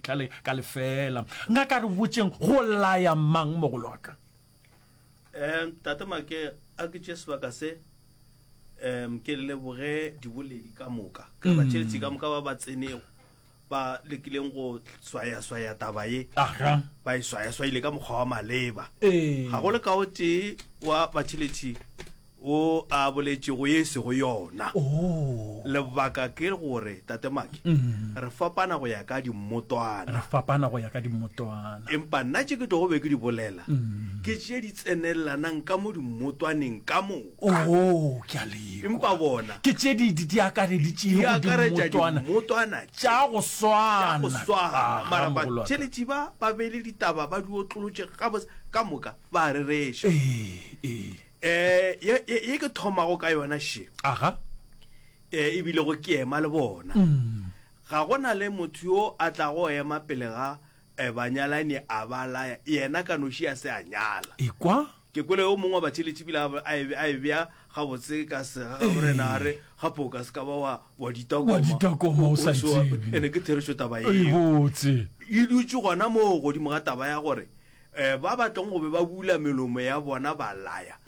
Ka le, ka lefeela. Nka ka re botšeng, go laya mang, mogolo wa ka? Um, Tate Make, a ke tše sebaka se, um, ke le leboge diboledi ka moka, ka batšeletsi ka moka ba ba tsenego, ba lekileng go swaya-swaya taba ye, Aha. ba e swaya-swayile ka mokgwa wa maleba. Ee. Ga go le ka o tee wa batšheletsi wo a boletšego ye e sego yona. Lebaka ke gore, Tate Maki, re fapana go ya ka dimmotwana. Re fapana go ya ka dimmotwana. Empa nna tše ke tlogo be ke di bolela, ke tše di tsenelelanang ka mo dimmotwaneng ka moka. Oo, ke a le kwa. Empa bona. Ke tše di, di, di akareditšego dimmotwana. Di akaretša dimmotwana. Tša go swana. Tša go swana. Mara batheletši ba, ba beile ditaba, ba di otlolotše gabotse, ka moka, ba a rereša. Ee, ee. Eh, ye, ye, ye ke thomago ka yona še aga eh, e bilego ke ema le bona mm. ga go na le motho yo a tlago ema pele ga eh, banyalani a ba laya yena ka noši a se a nyala ekwa ke kwele yo mongwe wa batšheletši bile a e- a e bea gabotse ka sega ga morena a re gape o ka se ka ba wa wa ditakoma Wa ditakoma o sa O- o- tsebe. ene ke therešo taba e eo botse e dutše gona moo godimo ga taba ya gore Eh, ba batlong go be ba bula melomo ya bona ba laya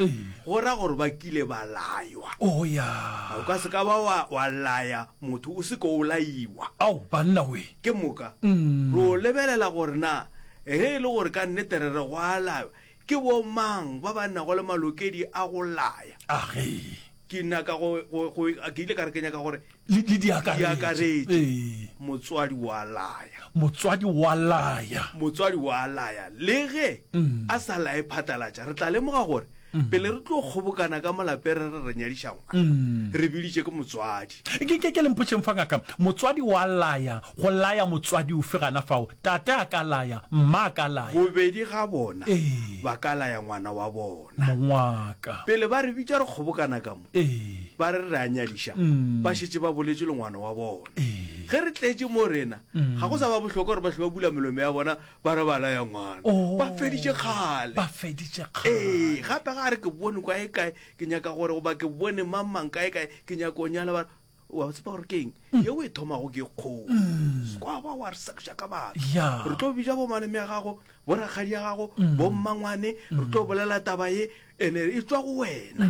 go ra gore ba kile ba laywa o oh, ya o ka se ka ba wa, wa laya motho o se ko o laiwa ao banna we ke moka mm. ro lebelela gore na ge e le gore ka nnete re re go a laywa ke bo mang ba ba nnago le malokedi a go laya age ke nna ka go ke ile ka re kenya ka gore le, le di akaretše. Di akaretše. Ee. Motswadi wa laya. Motswadi wa laya. Motswadi wa laya. Le ge a sa laye phatalatša, re tla lemoga gore pele re tlo kgobokana ka molapere re re nyadiša ngwana, re biditše ke motswadi. Ke, ke, ke le mpotšeng fa ngaka, motswadi wa laya, go laya motswadi ofe gana fao? Tate a ka laya, mma a ka laya. Bobedi ga bona Ee. ba ka laya ngwana wa bona. Mongwaka. Pele ba re bitša re kgobokana ka mo. Ee. Ba re re a nyadiša, ba šetše ba boletše le ngwana wa bona. Ee. Ge re tletše mo rena, ga go sa ba bohlokwa gore ba hlwe ba bula melomo ya bona ba re ba laya ngwana. Oo. Ba feditše kgale. Ba feditše kgale. Ee, gape ga a re ke bone kwa e kae, ke nyaka gore, goba ke bone mang-mang ka e kae, ke nyaka go nyala, ba re, wa tseba gore keng mm. ye o e thomago ke kgoo mm. sekwa ba wa re sekša ka batho re tlo bija bomaleme ya gago bo rakgadi ya gago mm. bo mmangwane re tlo bolela taba ye ene e tswa go wena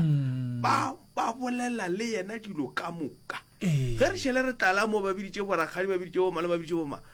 ba ba bolela le yena dilo ka moka ge re šhele re tlala mo ba biditše borakgadi ba biditše bomale ba biditše boma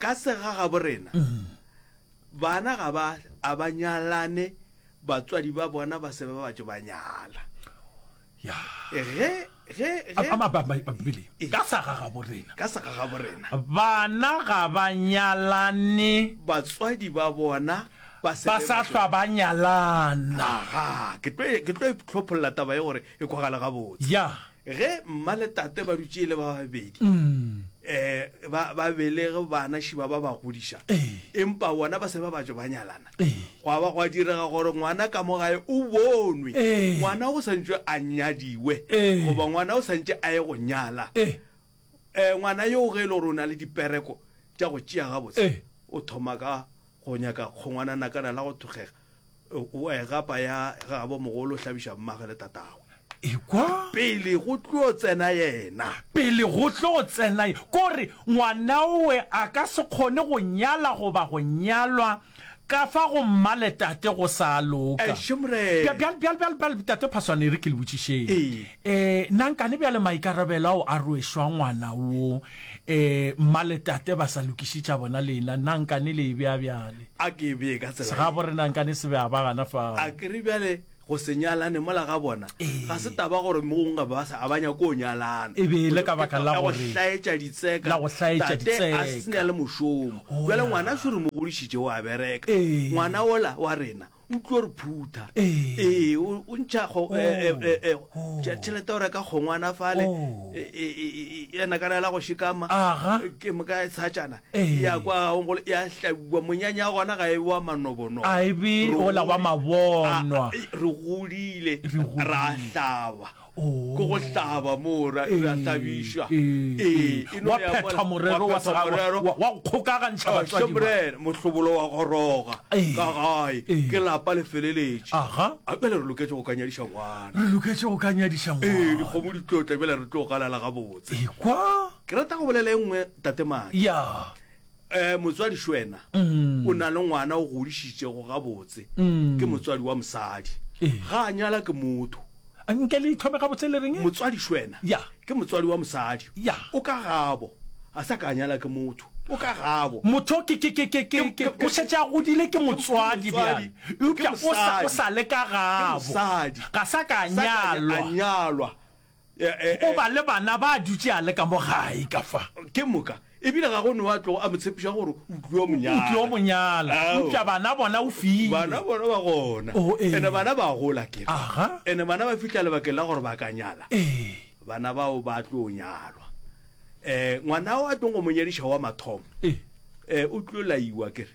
Ka segagabo rena, bana ga ba a ba nyalane, batswadi ba bona ba se ba batše ba nyala. Ya. Ge, ge, ge. Ama ba, ba, Bibeleng. Ee. Ka segagabo rena. Ka segagabo rena. Bana ga ba nyalane. Batswadi ba bona ba se. Ba sa hlwa ba nyalana. Aha, ke tlo, ke tlo itlhopholla taba ye gore e kwagale gabotse ya ge mma le tate ba dutše e le ba babedi um ba ba belege bana šiba ba ba godiša Ee. empa bona ba se ba batšo ba nyalana Ee. gwa ba gwa direga gore ngwana ka mo gae o bonwe Ee. ngwana o sa ntšwe a nyadiwe Ee. goba ngwana o sa ntše a ye go nyala e um ngwana yo ge e le gore o na le dipereko tša go tšea gabotse Ee. o thoma ka go nyaka kgongwana nakana la go thogega o a e gapa ya gabo mogolo hlabiša mmage le tatago ekwa pele go tlo tsena yena pele go tlo tsena kore ngwanaowe a ka se kgone go nyala goba go nyalwa ka fa go mmale tate go sa loka bjale tate phaswane re ke le botšišeng um nankane bjale maikarabelo ao a rwešwa ngwana wo E, mma le tate ba sa lokiše tša bona lena, na nkane le e bea bjale? A ke e bee ka tsela ye. Segabo re na nkane se bea ba gana fao. A ke re bjale go se nyalane mola ga bona, ga se taba gore mogong ga ba sa, a ba nyake go nyalana. E be e le ka baka la gore. La go hlaetša ditseka. La go hlaetša ditseka. Tate a se na le mošomo. Bjale ngwana sure mo godišitše, o a bereka. Ngwana ola wa rena, o tlo re phutha ee o ntšha tšhelete o reka kgongwana fale ena kana ela go shikama ke moka tshatšana ya kwa gongolo ya hlabiwa monyanya wa gona ga e wa manobonobo a e be ola wa mabonwa re godile ra hlaba Ko go hlaba moo ra ra hlabišwa. Ee, e no Wa ya phetha mole- morero wa wa phetha sega- morero. wa- wa go kgokagantšha batswadi ba- Shembrene mohlobolo wa goroga Ee. ka gae Ee. ke lapa le feleletše Aha. a bjale re loketše go ka nyadiša ngwana re loketše go ka nyadiša ee ngwana dikgomo di tlotla bjale re tlo galala gabotse ekwa ke rata go bolela e nngwe tatemane ya um motswadi šwena mm. o na le ngwana o godišitšego gabotse mm. ke motswadi wa mosadi eh. ga a nyala ke motho nke le ithome gabotse le reng motswadi šwena yeah. ke motswadi wa mosadi yeah. o ka gabo a sa ka a nyala ke motho o ka gabo motho o šetše a godile ke motswadi bjale eupša o sa le ka gabo ga sa ka a nyalwa O ba le bana ba dutše a le ka mo gae ka fa. Ke moka, ebile ga go no a tlogo a mo tshepiša gore o tlio mo nyala. O tlio mo nyala. Eupša bana bona o file. Bana bona ba gona. Oh, ee. Ene bana ba gola ke. Aha. Ene bana ba fihla lebakeng la gore ba ka nyala. Ee. Bana bao ba tlo nyalwa. Eh, ngwana o a tlong go mo nyadiša wa mathomo. Ee. Eh, o tlo laiwa ke re.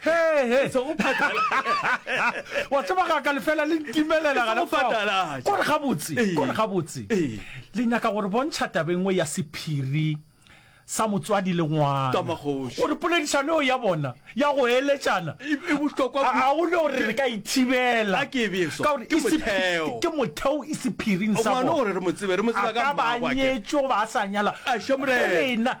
hehe wa tseba ga ka lefela le ntimelela gana fao kore gabotse kore gabotse le nyaka gore bontšha tabengwe ya sephiri sa motswadi le ngwana gore poledišano eo ya bona ya go eletšana e, e ga o ne gore re ka ithibela ke motheo e sephiring sa bona ba nyetšo ba sa nyala lena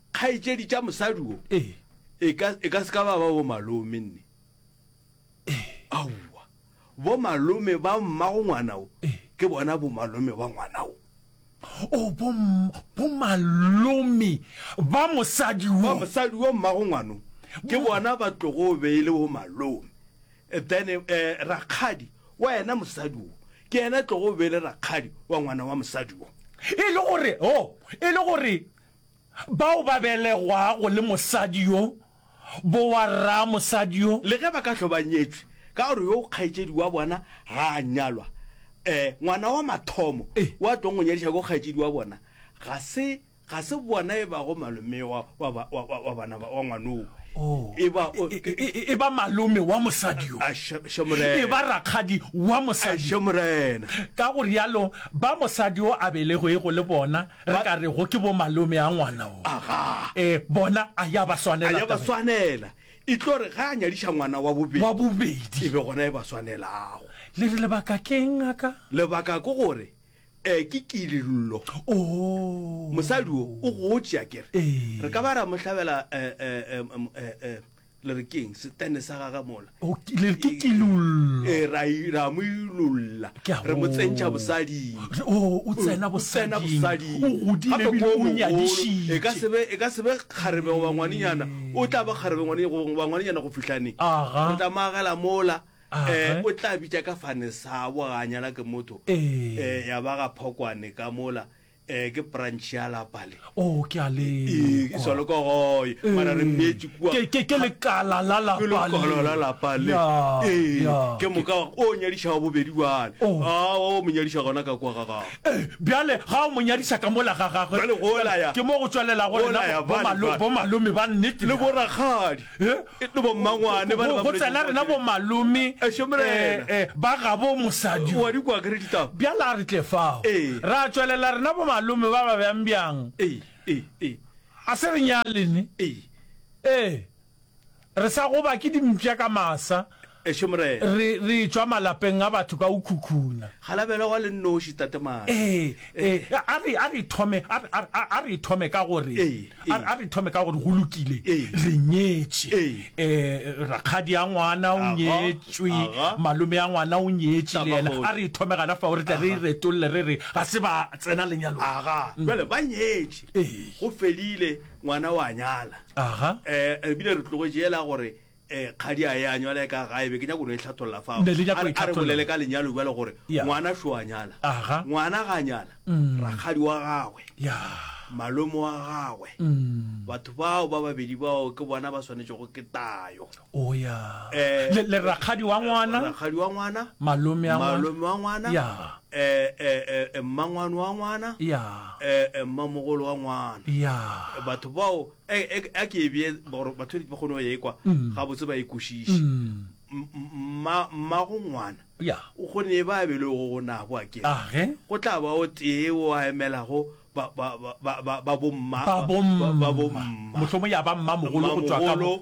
Kgaetšedi tša mosadi wo Ee. e ka, e ka se ka ba ba bo malome nne. Aowa. Bo malome ba mmago ngwana wo Ee. ke bona bo malome ba ngwana wo. O bo, bo malome ba mosadi Ba wo. mosadi wo mmago ngwano ke bona ba tlogo be e le bo malome. Eh, Then eh, rakgadi wa yena mosadi wo ke yena tlogo be e le rakgadi wa ngwana wa mosadi wo. E le gore, oh, e le gore Bao ba belegwago le mosadi yo, bowarraa mosadi yo. Le ge ba ka hlwa ba nyetšwe, ka gore yo kgaetšedi wa bona ga a nyalwa, ee, ngwana wa mathomo wo a tlogo nyadiša ke kgaetšedi wa bona, ga se, ga se bona e bago malome wa, wa, wa, wa, wa, wa bana ba, wa ngwana wo. E ba, o, e, e, e, e ba malome wa mosadi yo. A, še, še Morena. E ba rakgadi wa mosadi yo. Še Morena. Ka go realo, ba mosadi yo a belegwego le bona, Re ka re go ke bo malome a ngwana wo. Aga. E, bona, a ya ba swanela. A ya ba swanela. E tlo re ga a nyadiša ngwana wa bobedi. Wa bobedi. E be gona e ba swanelago. Le re lebaka keng a ka? Lebaka ke gore e ke kilillo. Oh. Mosadi o, o gotše a kere. Ee. Re ka ba ra mo hlabela e, e, e, e, e, e. le re keng setene sa gage mola O ke- le re ke kilollo e ra i- ra mo ilolla Ke a re mo tsentšha go- bosading Re- oh, o tsena O tsena bosading. bosading. O godile Gape ebile ko o mogolo, nyadišitše. e ka se be- e ka se be kgarebe goba ngwanenyana o tla ba kgarebe ngwane- go- goba ngwanenyana go fihlane Aga. re tla mo agela mola Aga. eh, o tla bitša ka fane sabo ga a nyala ke motho Ee. Eh, ya ba ga phokwane ka mola eh ke branch ya lapa le o ke a le Eh, ke solo ko goye mara re mmeetse kua ke ke ke lekala la la ke lekolo la lapa le Eh, ke moka o nyadiša wa bobedi bjale Oh. a o mo nyadiša gona ka kua ga gago Eh, bjale ga o mo nyadiša ka mola ga gagwe Bjale go la ya. ke mo go tswalelago Go la ya, bale, bale. bomalome ba nnete le borakgadi go tsela rena bomalome ba gabo mosadi bjala a re tle fao ra tšwelela rena bomalome ba ba bjang bjang a se re nyalene ee re sa goba ke dimpša ka masa Ešo Morena. Re, re tšwa malapeng a batho ka go khukhuna. Galabela wa le nnoši, Tate Madi. Ee, ee. A re, a re thome, a, a, a, a re thome ka gore, Ee, ee. a, a re thome ka gore go lokile, Ee. re nyetše. Ee. Um, rakgadi a ngwana o Aga, nyetšwe, aga. malome a ngwana o nyetše le yena. Tamagoši. A re thome gana fao, re tle re e Aga. retolle re re ga se ba tsena lenyalong. Aga, bjale ba nyetše. Ee. Go fedile, ngwana o a nyala. Aga. Um, re bile re tlogetše yela gore Eh, kgadi a ya nywa le ka gae be ke nya go no e tlhatholla fa. Ne le nya go e tlhatholla. Re bolele ka lenyalo bjale gore ngwana sho a nyala. Aha. Ngwana ga nyala. Mm. Rakgadi wa gagwe. Ya. Malome wa gagwe. Mm. Batho bao ba babedi bao ke bona ba swanetse go ke tayo. O ya. Eh, le le rakgadi wa ngwana. Eh, rakgadi wa ngwana. Malome wa ngwana. Malome wa ngwana. Ya. Eh, eh, eh, eh, mmangwano wa ngwana. Ya. Eh, eh, mmamogolo wa ngwana. Ya. Batho bao e, e, a ke e bee gore batho ba kgone go ye kwa mm. ga botse ba e kwešiše mmago ngwana o kgone e ba bele go go nabo a ke go tla ba o tee o a emelago ba bomma motlhomo ya ba mma mogolo go tswa ka go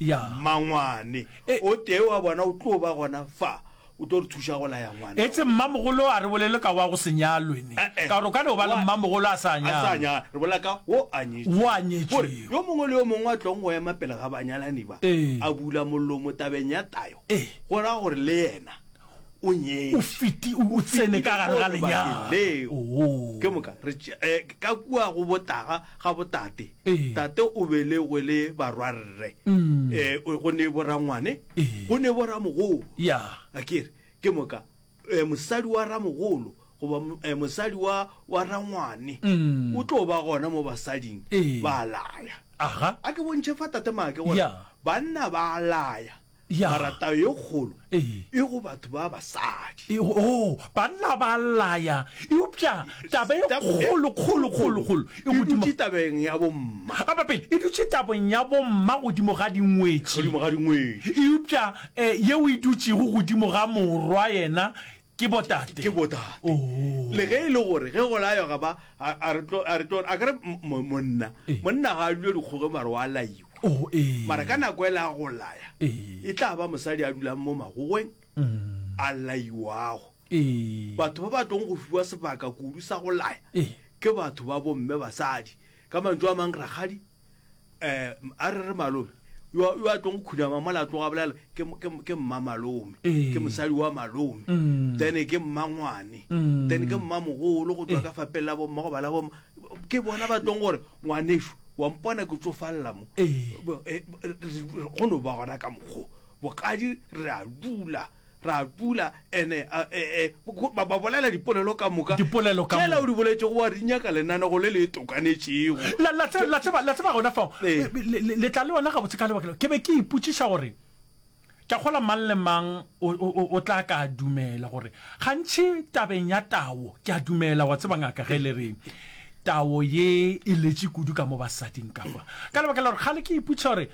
ya mangwane e- o tee wa bona o tlo ba gona fa O tlo re thuša go laya ngwana. Etse mmamogolo a re bolele ka wa go se nyalwe ne. Eh, eh. Ka gore o ka no ba le mmamogolo a sa A sa nyalwe. nya, re bolela ka wo a nyetšwe. Wo a nyetšwego. Gore yo mongwe le yo mongwe a tlong go ema pele ga banyalani ba, Ee. a bula mollomo tabeng ya tayo, Ee. go ra gore le yena o nyetše. O fiti, o, o tsene ka gare ga lenyalo. Leo. Oo. Ke moka re tše- eh, ka kua go botaga ga botate. Ee. Tate o belegwe le barwarre. Mm. Eh, o- go ne borangwane go ne bo ramogolo ya akere ke moka eh, mosadi wa ramogolo goba mo- eh, mosadi wa wa rangwane Mm. o tlo ba gona mo basading Ee. ba laya aha a ke bontšhe fa tate maake gore Ya. banna ba laya Ya. mara tao ye kgolo Ee. e go batho ba basadi E- o banna ba laya eupša taba e Taba e kgolokgolokgolokgolo e dutše tabeng ya bomma. Epa pele, e dutše tabong ya bomma godimo ga dingwetši. Godimo ga dingwetši. Eupša yeo e dutšego godimo ga morwa yena ke botate. Ke botate. Oo. Le ge e le gore ge go laywa ga ba, a, a re tlo, a re tlo, a ka re mo, monna, Ee. monna ga a dule dikgoge mare wa laiwa. Oo, ee. Mara ka nako e le ya go laya, Ee. e tla ba mosadi a dulang mo magogweng, a laiwago. Ee. Batho ba ba tlong go fiwa sebaka kudu sa go laya Ee. ke batho ba bomme basadi. Ka mantšu a mang rakgadi um a re re malome yo a- yo a tlong go khunama mola a tloga a bolela ke m- ke m- ke mma malome Ee. ke mosadi wa malome Mm. then ke mmangwane Mm. then ke mmamogolo go tswa ka fapeng la bomma go ba la bomma ke bona ba tlong gore ngwaneso wa mpona ke tsofalela mo Ee. Bo- eh, bo- re- re- go no ba gona ka mokgo bokadi re a dula Ra pula, ene a, e, e, ba, ba bolela dipolelo ka moka. Dipolelo ka Tšela o moka. di boletšego wa di nyaka lenanego le le tokanetšego. La, la, tse- la tseba, la tseba gona fao, Ee. le, le, le, le tla le yona gabotse ka lebaka leo. Ke be ke ipotšiša gore, ke a kgolwa mang le mang o, o, o, o tla ka a dumela gore, gantši tabeng ya tao, ke a dumela, wa tseba ngaka ge le re, tao ye e letše kudu ka mo basading ka kwa. Ka lebaka la gore kgale ke ipotšiša gore,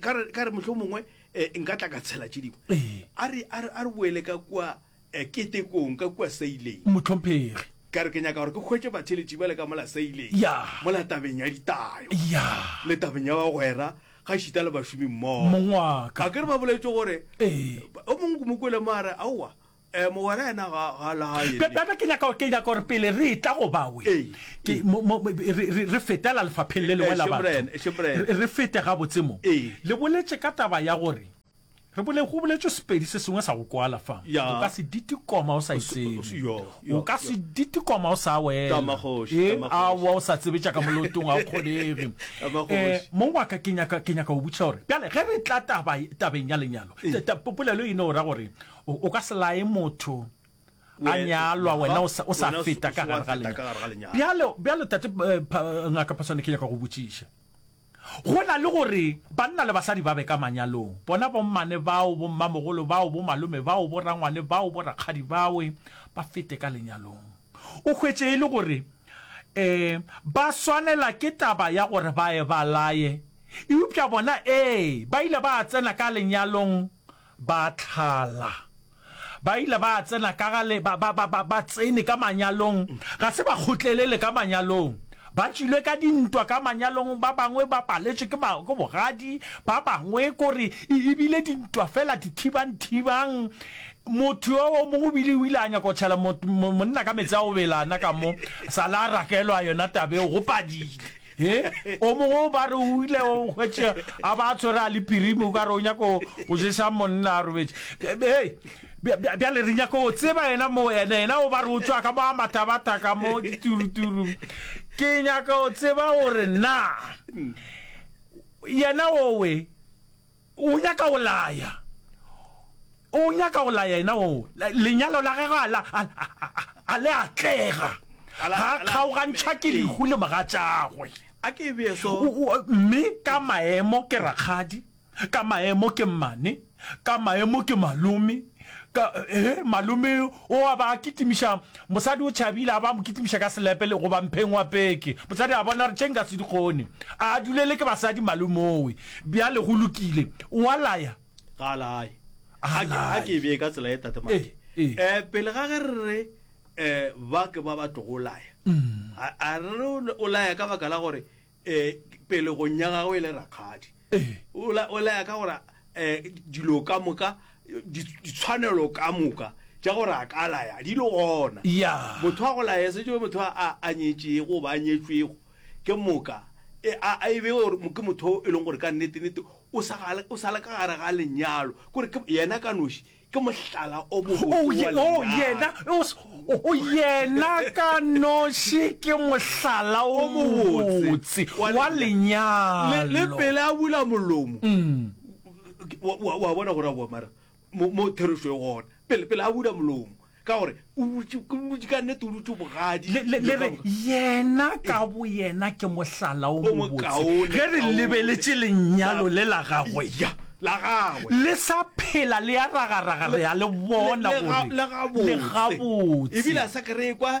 ka re motlho mongwe eh, nka tla ka tshela tše dingwe eh. a re boele ka kua eh, ketekong ka kua saileng motlhomphegi ka re ke nyaka gore ke kgwetse batheletši ba le ka mola saileng mola tabeng ya ditayo le tabeng ya bagwera ga šita le bašomi mmogo a ke re ba boletse gore o mongwe kumokwele maare aowa Eh, mogwera yena ga ga la hae. Be- bebe ke nyaka ke nyaka gore pele re etla go bawe Ee. ke mo- mo- mo- re- re re fetela lefapheng le lengwe la Eše batho morena, eše morena. Re- re fete gabotse mo Ee. le boletse ka taba ya gore re bole go boletswe sepedi se sengwe sa go kwala fa Ya. o ka se ditikoma o sa se- itsebe yo, yo, o ka se ditikoma o sa wela Tamagoši, Ee, tamagoši. aowa o sa tsebetša ka molotong a o kgonege Tamagoši. Eh, mo waka ke nyaka ke nyaka go botša gore bjale ge re tla taba- tabeng ya lenyalo ta- ta- polelo e no ra gore O, o ka se laye motho a Wena- nyalwa, wena o sa, o sa Wena o se- feta o ka se wa gare ga feta ka gare ga lenyalo. lenyalo. Bjale, bjale tate eh, pha, eh, ngaka Phaswane, ke nyaka go botšiša. Go na le gore banna le basadi ba be ka manyalong, bona bommane bao, bommamogolo bao, bomalome bao, borangwane bao, borakgadi bawe, ba fete ka lenyalong. O hwetše e le gore um ba swanela ke taba ya gore ba ye ba laye, eupša bona ee, ba ile ba tsena ka lenyalong. Ba tlala. Ba ile ba tsena ka ga le, ba, ba, ba, ba, ba tsene ka manyalong, ga se ba kgotlelele ka manyalong. Ba tšwile ka dintwa ka manyalong, ba bangwe ba paletšwe ke, ba, ke bogadi, ba bangwe ko re, e, e bile dintwa feela, dithibang-thibang. Motho yo o mongwe o bile o ile a nyaka go tšhela mo, mo, monna ka meetse a go bela, na ka mo, sa le a rakelwa yona taba eo, go padile. He, o mongwe o ba re o ile o hwetše a ba a tshwere a le pirimi o ka re o nyako go jesa monna a robetše. Be- be- Hei, bja- bja- bjale re nyako go tseba yena mo ene yena o ba re o tšwa ka mo a mathabata ka mo dituruturu. Ke nyaka go tseba gore na yena owe O nyaka go laya, o nyaka go laya yena oo, lenyalo la gagwe a la, a, a, a le atlega, ga a kgaogantšha ke lehu le mogatšagwe. A ke e bee so. O, o, mme ka maemo ke rakgadi, ka maemo ke mmane, ka maemo ke malome, Ka, he, malome o a ba kitimiša, mosadi o tšhabile, a ba mo kitimiša ka selepe le, goba mpheng wa peke. Mosadi a bona, a re, Tše nka se di kgone. A a dulele ke basadi, malomeowe. Bjale go lokile. O a laya? Ga a laye. A A ke, a laye. ke e bee ka tsela ye, Tate Ee, Maki. ee. Eh, pele ga ge re re, eh, ba ke ba ba tlogo laya, a, a re o, o laya ka baka la gore um pelegong ya gagwe e le rakgadi o laya ka gore um dilo ka moka ditshwanelo ka moka ja gore a ka laya di le gona motho wa go laya se jo motho a a nyetšego ba a nyetšwego ke moka e, a e be gore ke motho e leng gore ka nnete-nnete o sale ka gare ga lenyalo kore yena ka noši Ke mohlala o mobotse oh, ye, wa oh, yena, oh, oh, yena ka noši ke mohlala o mobotse wa lenyalo. Le pele a bula molomo. Mm. Wa bona gore a boamara mo therešo e gona. Pele pele a bula molomo. Ka gore o dutše, o dutše, ka nnete o dutše bogadi. Le, le, le re, Yena ka Boyena ke mohlala o O mobotse, mokaone, ge re kaone. lebeletše Lenyalo le la Gagwe, Ya, la Gagwe. le sa phela le ya ragaraga, re a Le, le bona le ga, gore le le gabotse. E bile gabotse. a sa ka re ekwa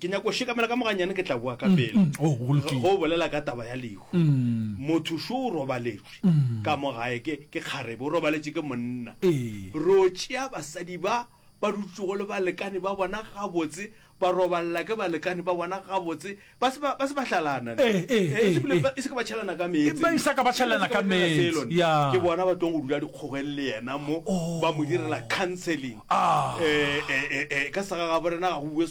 ke nyako o shekamela ka moganyane ke tla boa ka pele mm, mm. Oh, go bolela ka taba ya lehu mm. motho šo o robaletšwe ka mo gae ke kgarebe o robaletše ke monna ee. ro tšea basadi ba ba dutsogo le balekane ba bona gabotse ba robalela ke balekane ba bona gabotse ba se ba hlalana ee, ee, e se ke ba tšhelana ka meetseke bona ba tong go dula dikgogeng le yena mo oh. ba mo direla counseling ah. ka sega ga borena ga go bue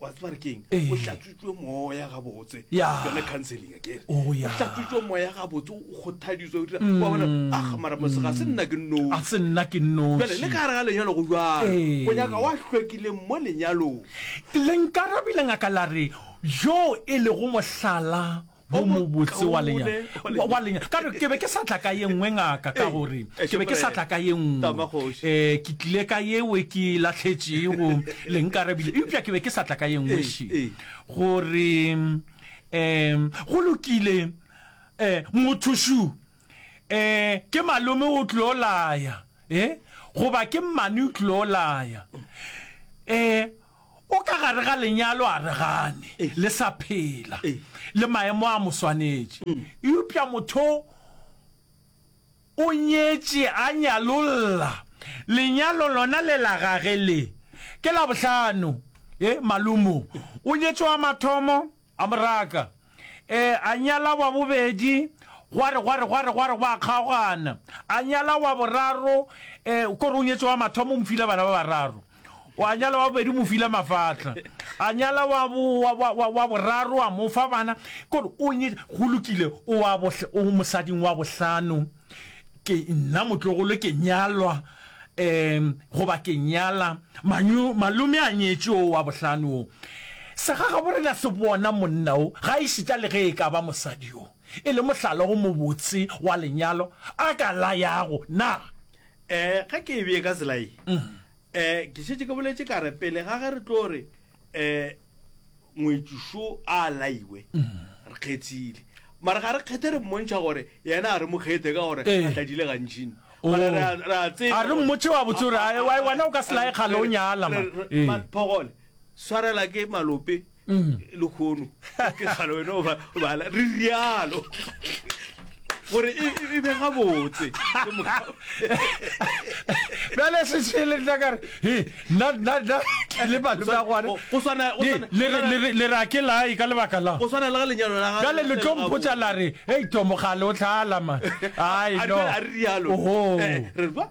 wa tseba re keng Ee. o tlatswitswe moya gabotse Ya. yone counseling again Oh, ya. o tlatswitswe moya gabotse o kgothaditswe o dira wa bona ah mara mose ga se nna ke nno Mm. a se nna ke jale le noši ka gare ga lenyalo go jalo Ee. go nyaka wa hlwekileng mo lenyalong lenkarabile ngaka la re yo e lego mohlala o mobotse wa lenyalo wa lenyalo ka re ke be ke sa tla ka ye nngwe ngaka ka gore ke be ke sa tla ka ye nngwe eh ke tlile ka yeo ke latlhetšego le nkarebile eupša ke be ke sa tla ka ye nngwe she gore um go lokile um motho shu um ke malome o tlo laya e goba ke mmane o tlo laya um O ka gare ga lenyalo a re gane le sa phela, le maemo a mo swanetše. Eupša motho o nyetše, a nyalolla. Lenyalo lona le la gage le ke la bohlano. Ee, malumo o nyetše wa mathomo. A mo raka. Ee, a nyala wa bobedi, gwa re, gwa re, gwa re, gwa re gwa kgaogana. A nyala wa boraro, ee, ko re o nyetše wa mathomo, o mo file bana ba bararo. O a nyala wa bobedi, o mo file mafahla. A nyala wa, wa, wa, wa, wa boraro, a mo fa bana. Ko re o nye, go lokile, o wa bohl-, o mosading wa bohlano. Ke nna motlogolo ke nyalwa um goba ke nyala manyo malome a nyetše o wa bohlano o sa ga gabo re ka se bona monna o ga e šita le ge e ka ba mosadi o e le mohlala o mobotse wa lenyalo a ka la yago na um ge ke e bee ka tsela ye um ke šetše ke boletše ka re pele ga ge re tlo re um ngwetši šo a laiwe re kgethile mara ga re kgethe re mmontšha gore yena a re mo kgethe ka gore Eh. a tladile gantšini Oh. Mara re a- re a tseba A re gore- mmotše wa botse gore, A- a- "Ai, wai, wena o ka se laye kgale o nyala, man." Re- re- Eh. man, phogole swarela ke malope Mm. le kgono ke kgale wena o ba- o bala re rialo gore e, e, e be gabotse bjale sešele nna kare le malome a gwanele ra ke lae ka lebaka la go tshwana le ga lenyalo la bjale le tlo mpotsa la re ei tomogale o tlhalama ai no a re rialo eh, re ba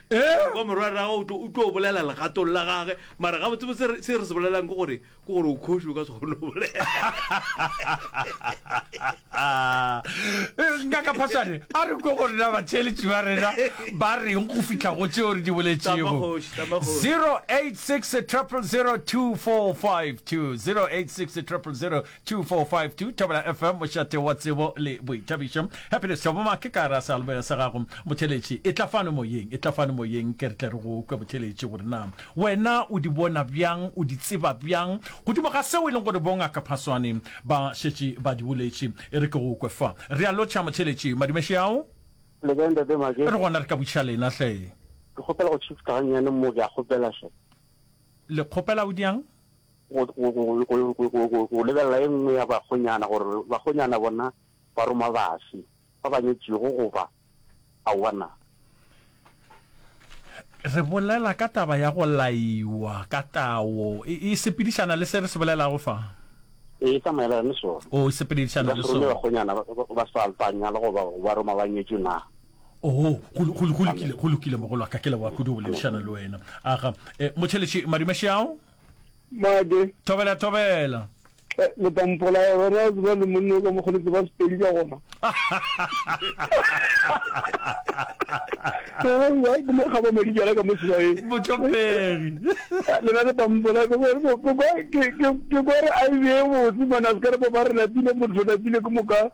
Ee. Kwa morwarragwe o tlo- o tlo bolela legatong la gage mara gabotsebotse re- se re se bolelang ke gore ke gore o kgoši o ka se kgone go bolela nka ka phaswane a re kwe gore na batheeletši ba rena ba reng go fitlha go tseo re di boletšego Tama kgoši, tama kgoši. 086 0002452 086 0002452 2452 Thobela FM Mošate wa tsebo le boithabišo Happiness Thoboma ke ka ra sealboya sa gago Motheletši e tla fano moyeng e tla fano moyeng ke re tle re go kwe Motheletši gore na wena o di bona bjang o di tseba bjang godimo ga seo e leng gore bongaka Phaswane ba šetše ba di boletše e re ke go kwe fa re a lotšha Motheletši Madumešeao Le kae ntate Make? Re gona re ka butšha lena hle. Ke kgopela go tšhifta gannyane mo ke a kgopela hle. Le kgopela o diang? go lebelela e nngwe ya bakgonyana gore bakgonyana bona ba roma base ba ba nyetšego goba aowa na. Re bolela ka taba ya go laiwa ka tao. E, e sepedišana le se re se bolelago fa? E, e tsamaelana le sona. O, e sepedišana le sona. Ba bakgonyana ba sa alpanya le goba ba roma ba nyetšwe na. Oho, go lokile, go lokile mogolo wa ka, ke leboga kudu go boledišana le wena. Aga, eh, motšheletši Madimašiao? Made. Thobela, thobela. Eh, le tla mpolaya gona a tseba le monne ka mokgone tseba sepedi ka gona ke mo kgaba madijala ka mosebae botlopegi eh, lena le tla mpolaya ke gore a e bee botse mane a se ka re ba ba re lapile motho lapile ke moka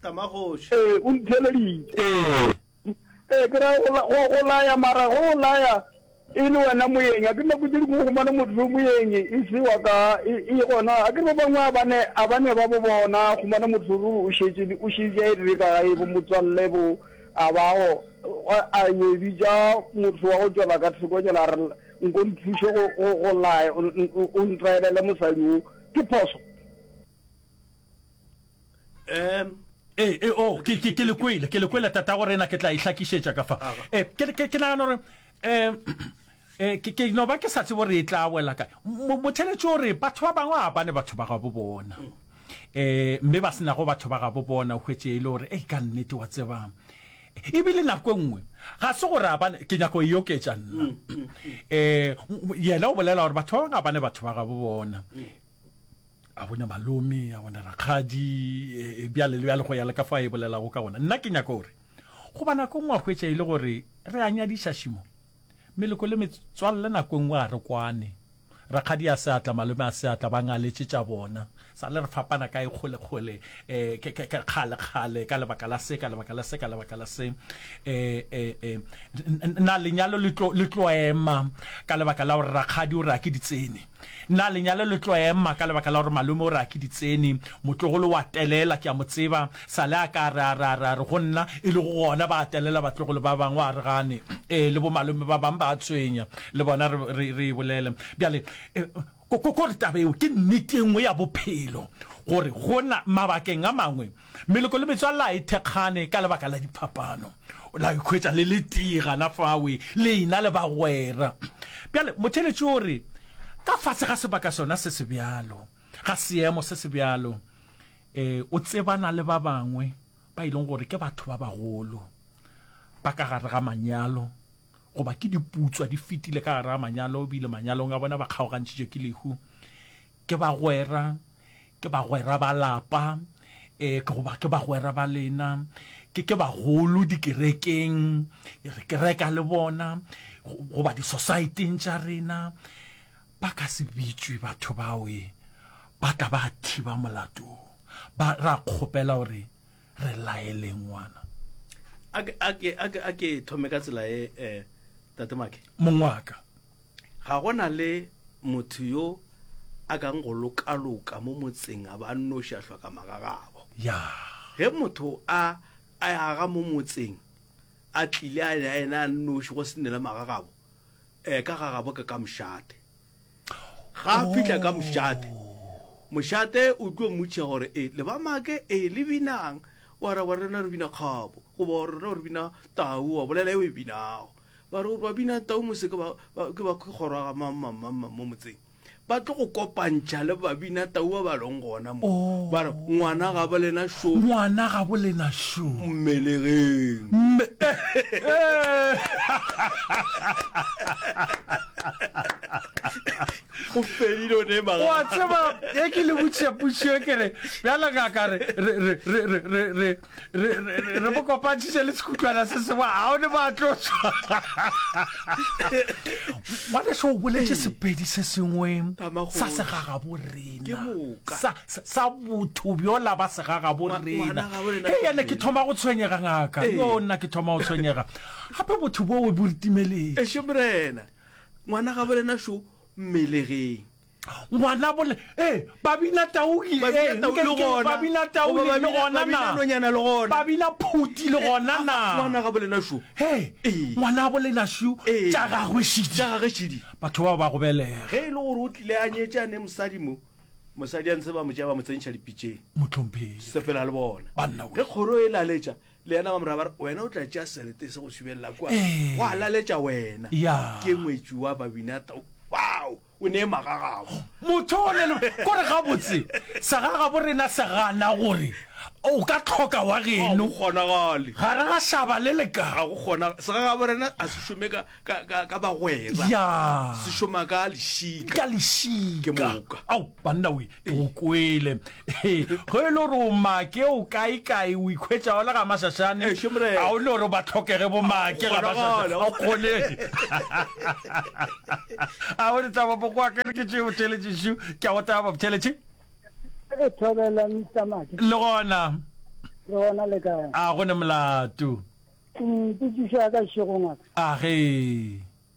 Tamagoši. Ee, o ntheeleditše. Ee. Ee, ke ra go go laya, mara go go laya e le wena moyeng. A ke nako tše dingwe o humana motho yo moyeng e se wa ka e, e gona. A ke re ba bangwe a bane a bane ba bo bona humana motho ruri o šetše o šetše a e dire ka gae bo motswalle bo a bago a yo e bitša motho wa go tšwela ka theko tšela a re nko nthuše go go go laya o ntraelele mosadi o ke phoso um ee ee o oh, ke ke le kwele ke le kwele tata go rena ke tla e hlakišetša ka fa ee eh, ke ke nagana gore um ee eh, ke no ba ke sa tsebo re e tla wela kae motheletši o re batho ba bangwe ga bane batho ba gabo bona um mme ba senago batho ba gabo bona o hwetse e le gore ei ka nnete wa tsebang ebile nako nngwe ga se gore abane ke nyako e oketša nna um yena o bolela gore batho ba bangwe ga bane batho ba gabo bona a bona malome a bona rakgadi e, e, bjale le bjale go ya le ka fa e bolelago ka gona nna ke nyaka gore go ba nako ngwe a hwetša e le gore re a nyadiša šimo meleko le metswalle nako ngwe a re kwane rakgadi a seatla malome a seatla ba ngaletse tša bona sa le re fapana ka e kgolekgole um ke kgalekgale ka lebaka la se ka lebaka la se ka lebaka la se um na lenyalo le tloema ka lebaka la gore rakgadi o re a ke di tsene Na lenyalo le tlo ema ka lebaka la gore malome o re a ke ditseni? Motlogolo wa telela, ke a mo tseba. Sale a ka re, a re, a re, a re, go nna, e lego gona ba telela batlogolo ba bangwe, a re gane. Ee, le bomalome ba bangwe ba a tshwenya. Le bona re, re, re e bolele. Bjale, ko, ko, ko re taba eo ke nnete e nngwe ya bophelo, gore go na, mabakeng a mangwe, Meloko le metswalle a e thekgane ka lebaka la diphapano. O la ikhwetša le le tee gana fawe, le ena le bagwera. Bjale, motheeletši o re, Ka fase ga sebaka sona se se bjalo, ga seemo se se bjalo, e, o tsebana le ba bangwe ba e leng gore ke batho ba bagolo ba ka gare ga manyalo, goba ke diputswa di fetile ka gare ga manyalo, bile manyalong a bona ba kgaogantšhitšwe ke lehu. Ke bagwera, ke bagwera ba lapa, e, goba ke bagwera ba lena, ke, ke bagolo dikerekeng, e, re kereka le bona, goba disosaeteng tša rena, ba ka se bitšwe batho bao, e, ba tla ba thiba molato wo. Ba, ra kgopela gore re laele ngwana. A ke, a ke, a ke, a ke thome ka tsela e, e, Tate Make? Mongwaka. Ga go na le motho yo a kang go lokaloka mo motseng a ba a nnoši a hloka magagabo. Ya. Ge motho a a aga mo motseng a tlile a ya ena a nnoši go se nele magagabo, eh, ka gagabo ke ka mošate. Ga a fihla ka mošate, mošate o tlo mmotšiša gore, eh, le ba make, eh, le binang? Wa araba, rena re bina kgabo, goba rena re bina tau, wa bolela e o e binago. ba re ba bina tau mose ke ba ke ba ke kgoro ga mamamamma mo motseng ba tlo go kopantšha le ba bina tau ba ba leng gona mo oh. ba re ngwana ga bo lena sho ngwana ga bo lena sho mmelegeng mme go fedile ne ba wa tseba e ke le butšhe putšhe ke re bjala ka ka re re re re re re mo kopantšhitše le sekutlwana se sengwe ga o ne ba tlo tswa ngwaneso o boletse sepedi se sengwe sa segagabo rena sa botho bjola ba segagabo rena e yane ke thoma go tshwenyega ngaka yo nna ke thoma go tshwenyega gape botho boo bo retimeleng eshe morena ngwana gabo rena sho mmelegeng ngwana bole ee babina tauli babina tauli le gona na nonyana le gona babina phuti le gona na ngwana ga bolena shu he ngwana bolena shu tša gagwe shidi tša gagwe shidi batho ba ba go belega ge ile gore o tlile a nyetse a ne mosadi mo mosadi a ntse ba mo tšea ba mo tsentšha dipitseng motlhomphele sepela le bona banna ge kgoro e laletša le yena ba mora ba re wena o tla tšea selete se go subelela kwa go a laletša wena ke ngwetsi wa babina tau wow O ne magagago. Motho o lelo kore gabotse sa ga gabo rena se gana gore o ka tlhoka wa geno. Ga kgonagale. Ga re ga shaba le le ka. Ga go kgona se ga gabo rena a se shome ka ka ka ka bagwera. Ya. Se shoma ka lešika. Ka lešika. Ke moka. Au banna we o kwele go e le gore o make o kaekae o ikhwetsa wa le ga masasane ga o le gore ba tlhokege bo make ga masasane o kgone a o letsa ba boko akere ke tšeo theletše šo ke a go taba theletše le gona a go ne molato a ge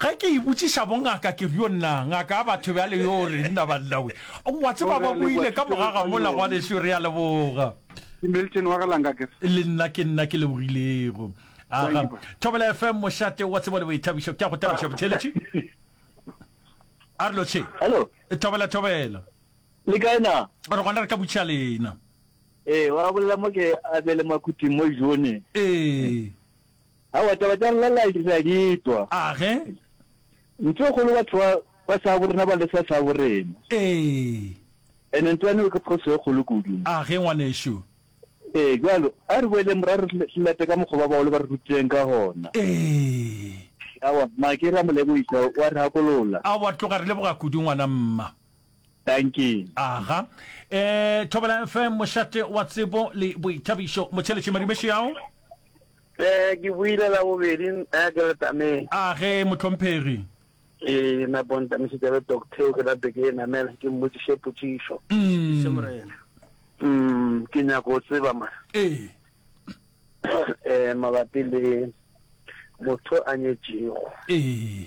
Ge ke ibotšiša bongaka ke re, Yo nna, ngaka ya batho bjale yo o reng na bannawe? O a tseba ba boile ka moga ga mola, ngwanešu, re a leboga. Ke Milton wa Galanga ke re. Le nna ke nna ke lebogilego. Aga, Thobela FM, mošate wa tsebo le boithabišo. Ke a go thabiša, botheeletši. A re lo tšhe. Hello. Thobela, Thobela. Le kae na? Re gona re ka botšiša lena. Ee, wa bolela mo ke Abele Makhuthing mo Jone. Ee. Aowa, taba tša Nlalai re a di twa. A ge? Ntho e kgolo batho ba, ba šabo rena ba lesa šabo rena. Ee. And ntwa neo ke phoso e kgolo kudu. A ge, ngwanešu? Ee, bjalo, a re boeleng morago re re late ka mokgo ba bagolo ba re rutileng ka gona. Ee. Aowa, mma, ke re a mo lebogiša, o a re gakolola. Aowa, tloga re leboga kudu, ngwana, mma. Dankie. Aga. E, Thobela FM, mošate wa tsebo le boithabišo. Motšheletše, Madibe Šiao. Ee, ke boile la bobedi eh, ke letameng. A ge mohlomphegi. Ke napo ntamišitša le doctor ke nape ke e namela ke mmotšiše potšišo. Ise Morena. Mm, ke nyaka go tseba ma. Ee. Eh, mabapi le motho a nyetšego. Ee.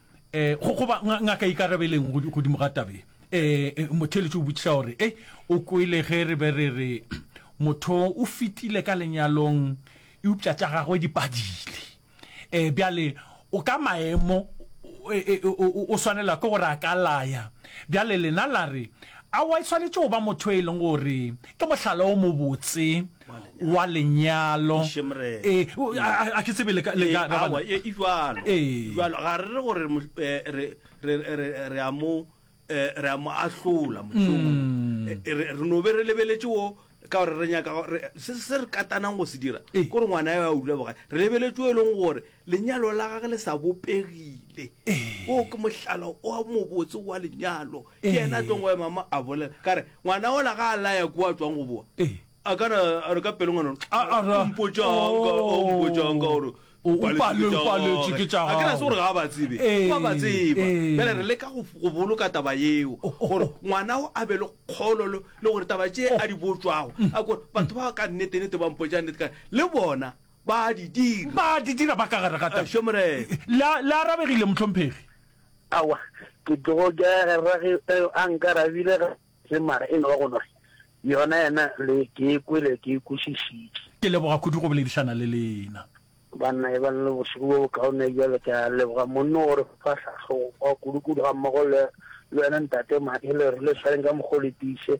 um goba ngaka e ikarabeleng godimo ga tabe um motheeletši o botšiša gore e o kwele ge re be re re motho o fetile ka lenyalong eupša tša gagwe di padile um bjale o ka maemo o swanela ke gore a ka laya bjale lena la re aowa e swanetše go ba motho e leng gore ke mohlala o mobotse wa lenyalo e a ke tsebe le ka le ka ba ba e jwalo jwalo ga re re gore re re re re a mo re a mo ahlola mošomo re no be re lebeletse o ka gore re nyaka se se re katanang go se dira ko re ngwana ya o dula boga re lebeletse o e leng gore Lenyalo la gage le sa bopegile. Woo ke mohlala o mobotse wa lenyalo. Ke yena a tlong go ema mo a bolela ka re, ngwana ola ga a laya kua a tswang go boa, a ka re a re ka pelo ngwana ola, A- a ra- o mpotšang ka- o Oh. mpotšang ka gore O- o paletswe pale- ke tša o paletswe gagwe. ke tša A ke na se gore gago. ga a ba tsebe, Ee, wa ba tseba. ee. Bjale re leka go go boloka taba yeo Oh, oh, gore oh. ngwana o a be le kgolo le le gore taba tše a di botšwago a kore batho ba ka nnete-nnete ba mpotšang nnete ka le bona Ba a di dira. Ba a di dira ba ka gare ga taba. Ešo Morena. Le a, le arabegile, mohlomphegi. Aowa, ke tlogo ke ya gare ge a nkarabile ga se mara e no ba go no re, Yona yena le ke e kwele, ke e kwešišitše. Ke leboga kudu go boledišana le lena. Banna e ba le bošego bjo bokaone bjale. Ke a leboga monno gore fa hlahlogo kudu-kudu gammogo le, le wena Ntate Madi le re le swareng ka mokgwa o le tiiše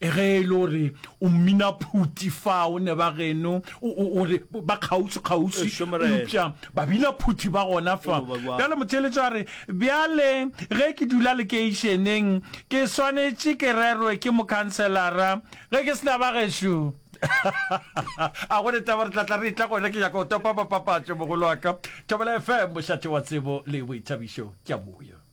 Ge e le gore o mmina phuti fao ne ba geno o re ba kgauswi kgauswi eupša babina phuti ba gona fa bjale motheeletša a re bjale ge ke dula lekeišeneng ke swanetše ke rerwe ke mokhanselara ge ke sena ba gešo a go taba re tlatla re tla gona ke nyaka go topa papapatšo mogolo wa ka thobela fm mošate wa tsebo le boithabišo ke a boya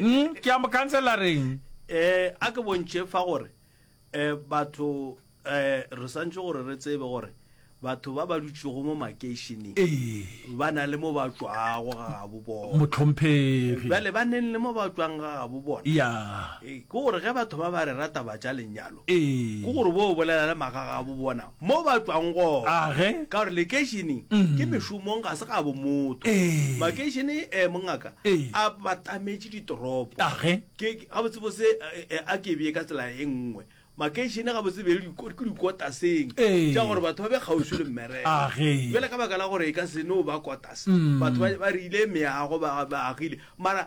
mm, ke a mo khansela reng eh a ke bontšhe fa gore eh batho eh re santse gore re tsebe gore batho ba ba dutšego mo makeišeneng ee. ba na le mo ba tswago ga gabo bona motlhomphegi bale ba neng le mo ba tswang ga gabo bona ya ee, ke gore ge batho ba ba re rata ba tša lenyalo ee. ke gore bo bolela le maga gabo bona Mo ba tšwago gona, ka gore lekeišene ke mešomong ga se ga bomotho. Makeišene e mongaka a batametše ditoropo. Ke gabotsebotse a ke bee ka tsela e nngwe. Makeišene gabotse be le ke dikotaseng tša gore batho ba be kgauswi le mmereko. Bjale ka baka la gore e ka se no ba kotase, batho ba rile meago, ba agile. Mara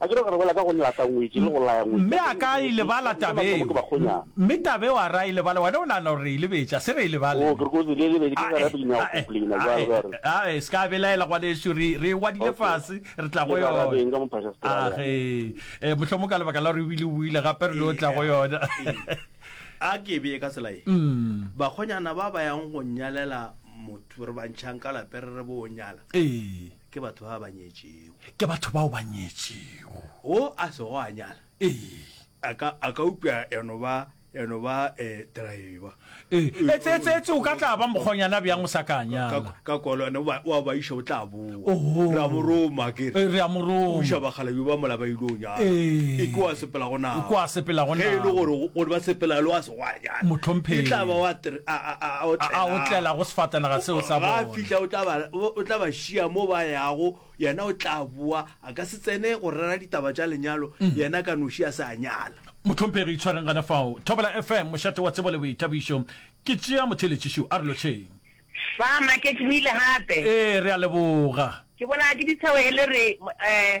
A ke re go re bolela ka go lla tangwetši le go laya ngwetši? Mme a ka e lebala taba eo? Mme taba eo a re a e lebale? Wena o nagana gore re e lebetše? A se re e lebale. Oo, ke re kotsi le lebedi ke gare bina go plina jwale ba re. A e se ka belaela ngwanešu, re re e ngwadile fase, re tla go yona. Eng ka mophaša Strada? A ge, mohlomong ka lebaka la gore o bile o buile gape re no tla go yona. A ke e bee ka tsela e, bakgonyana ba ba yang go nyalela motho re ba ntšhang ka lapeng re re bo o nyala. Ee. Ke batho ba ba nyetšego. Ke batho bao ba nyetšego. Wo a sego a nyala. Ee. A ka, a ka upša ya no ba, ya no ba eh, driver. Ee, etse, etse, etse, o ka tla ba mokgonyana bjang o sa ka nyala. Ka, ka kolwane, wa, wa ba iša, o tla boa. Oho. Re a mo roma, ke re. Ee, re a mo roma. O iša bakgalabje ba mola ba ile go nyala. Ee. E kwa sepela go nako. E kwa sepela go nako. Ge e le gore, gore ba sepela le wa. Gwa realo. Mohlomphegi. E tla ba wa tr, a, a, a, a otlela. A otlela go sefatanaga seo sa bona. Ga a fihla, o tla ba, o tla ba šia mo ba yago, yena o tla boa. A ka se tsene go rera ditaba tša lenyalo, yena ka noši a se a nyala. Mohlomphegi, itshwareng gana fao. Thobela FM, mošate wa tsebo le boithabišo. Ke tšea motheeletši šo. A re lotšheng. Fa, Maketše o ile gape. Ee, re a leboga. Ke bolawa ke ditheohele re, mo, eh.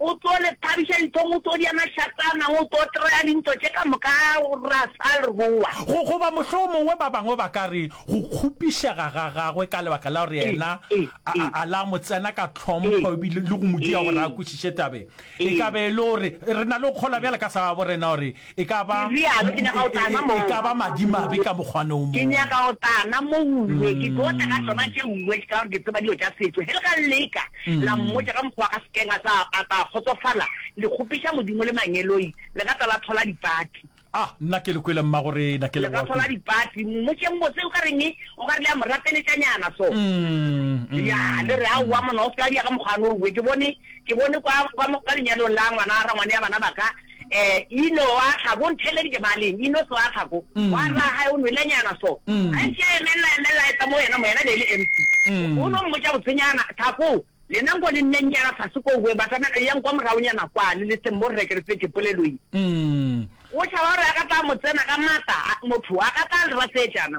O tlo le thabiša dinthong, o tlo di ema šatanang, o tlo trea dintho tše ka moka ra sa rua. Go, goba mohlomongwe ba bangwe ba ka re, go kgopišega ga gagwe ka lebaka la gore yena a, a, a la mo tsena ka tlhompho ebile le go mo dia gore a kwešiše taba e. E ka be e le gore re na le go kgolwa bjale ka sa gaborena gore E ka ba, Ke realo, ke nyaka go tla na mo. e ka ba madimabe ka mokgwane o Ke mongwe. nyaka go tla na mouwe. Ke tlo tla ka tšona tše uwe, ka gore ke tseba dilo tša setšo. Ge le ka leka la mmotša ka mokgwa wa ka sekeng, a tla, a tla kgotsofala. Le kgopiša Modimo le mangeloi, le ka tla la thola dipati. Ah, nna ke le kwele, Mmagorena, ke Le ka leboga thola kudu. dipati. Mmotšeng botse, o ka reng e? O ka re le a mo rapeletšanyana so. Mm, Ya, le mm. re, Aowa monna, o se ka wa di ya ka mokgwane o uwe. Ke bone, ke bone kwa, kwa, mo- kwa lenyalong la ngwana, rangwane ya bana ba ka, Eh, ino wa tla ko, ntheeleditše baleng, ino se wa tla ko. Wa rra wa gae o nwelenyana so. Gantši a emelela, emelela, a etla mo yena, mo yena be e le empty. O no mmotša botsenyana, tla ko, lena nko le nnennyana fase ko, boeng batamela, eyang kwa moraonyana kwale, le seng mo rre, ke re fete polelo ye. O tšhaba gore a ka tla mo tsena ka matla, a, motho, a ka tla a le rasetšana.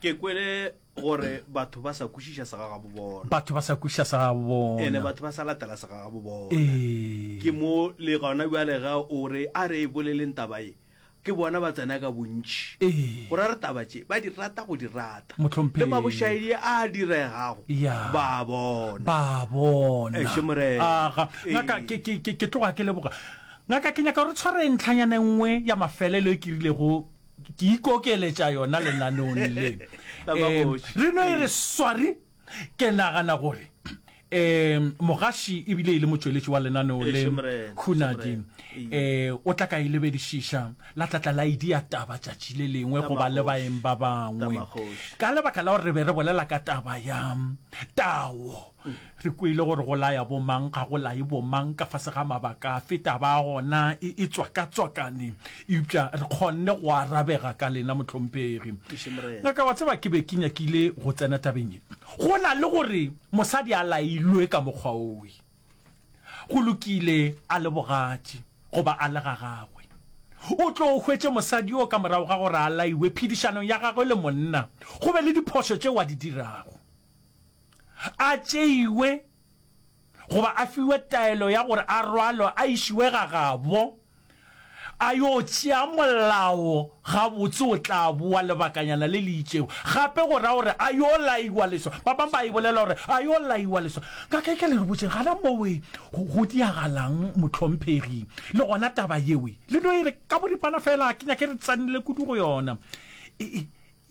ke kwele gore batho ba sa kwešiša segagabo bona batho ba sa kwešiša segagabo bona ene batho ba sa latela segagabo bona ee. ke mo le gona bjale ga o re a re e boleleng taba e ke bona ba tsena ka bontši ee. go ra re taba tše ba di rata go di rata le mabošaedi a diregago ba bona ba bona ke tloga ke leboga ngaka ke nyaka gore tshware ntlhanyane nngwe ya mafelelo e ke rilego Ke ikokeletša yona lenaneong le. Um, re no e re swari. Ke nagana gore um mogaši ebile e le motšweletši wa lenaneo le khunadi um o tla ka e lebedišiša la tlatla la idia taba tšatši le lengwe goba le baeng ba bangwe ka lebaka la gore re be re bolela ka taba ya tawo Re kwele gore go laya bomang ga go laye bomang ka fase ga mabaka a fe taba ya gona e, e tswakatswakane. Eupša re kgonne go arabega ka lena, mohlomphegi. Ngaka, wa tseba, ke be ke nyakile go tsena tabeng ye. Go na le gore mosadi a lailwe ka mokgwa owe, go lokile, a le bogatši goba a le ga gagwe, o tlo o hwetše mosadi yoo ka morago ga gore a laiwe phedišanong ya gagwe le monna, go be le diphošo tšeo a di dirago. a tšeiwe goba a fiwe taelo ya gore a rwalwe a išiwe gagabo a yo tšea molao gabotse o tla boa lebakanyana le le itšego gape go ra gore a yo laiwa leswa ba bangwe ba e bolela gore a yo laiwa leswa ka ke ke le botseng gana mowe go diagalang motlhomphegi le gona taba yewe le no e re ka boripana fela ke nyake re tsenele kudu go yona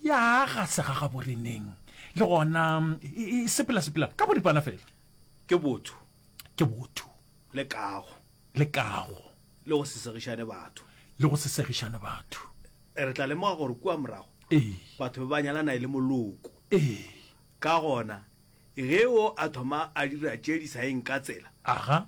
Ya ga se ga gaboreneng, le gona e, e sepela-sepela ka boripana fela. Ke botho. Ke botho. Le kago. Le kago. Le go se segišane batho. Le go se segišane batho. Re tla lemoga gore kua morago Ee. batho ba ba nyalana e le moloko. Ee. Ka gona, ge o a thoma a dira tše di sa yeng ka tsela, Aga.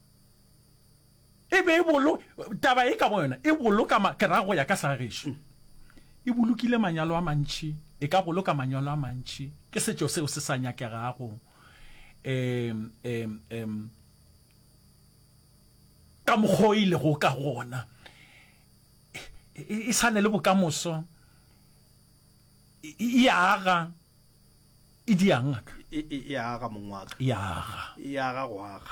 E be e bolo, taba e ka boyona e boloka ma, ke ra go ya ka sa gešo, e bolokile manyalo a mantši, e ka boloka manyalo a mantši. Ke setšo seo se sa nyakegago um, um, um, ka mokgwa o e lego ka gona. E, e sa ne le bokamoso, e, e aga. e di yang ngaka e e e aga mong wa ka ya ga e aga go aga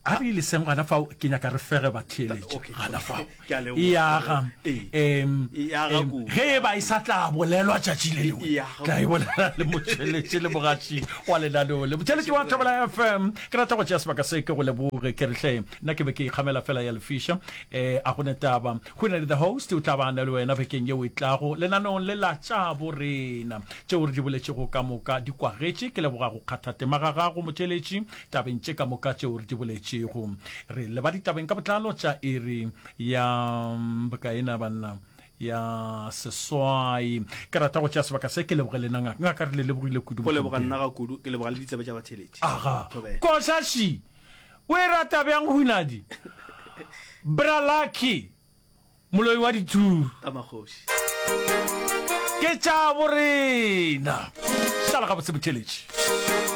a re ile seng gana fao ke nyaka re fege ba theeletša Okay, gana okay. fao Ke a leboga. e aga Ee. em E aga em, kudu. ge e ba e sa tla bolelwa tšatši le lengwe E aga tla e bolela le motšheletše le mogatši wa lenaneo le motšheletše wa thobela fm ke rata go tšea sebaka se ke go leboge ke retlhe nna ke be ke ikgamela fela ya lefiša um a gone taba Go na le The Host o tla ba na le wena bekeng yeo e tlago lenaneong le la Tša Bo Rena. Tšeo re di boletšego ka moka di kwagetše. Ke leboga go kgatha tema ga gago motšweletši tabeng tše ka moka tšeo re di boletšego. Re leba ditabeng ka botlalo tša iri ya bokae na banna? ya seswai. Ke rata go tšea sebaka se ke leboge lena ngaka. Ngaka re le lebogile kudu. Go leboga nna ga kudu, ke leboga le ditsebe tša batheletši. Aga. Thobela. Koša shi! O e rata bjang hunadi? Bra Lucky, moloi wa dithuru. Ka magoši. Ke tša borena. Šala gabotse botheletši.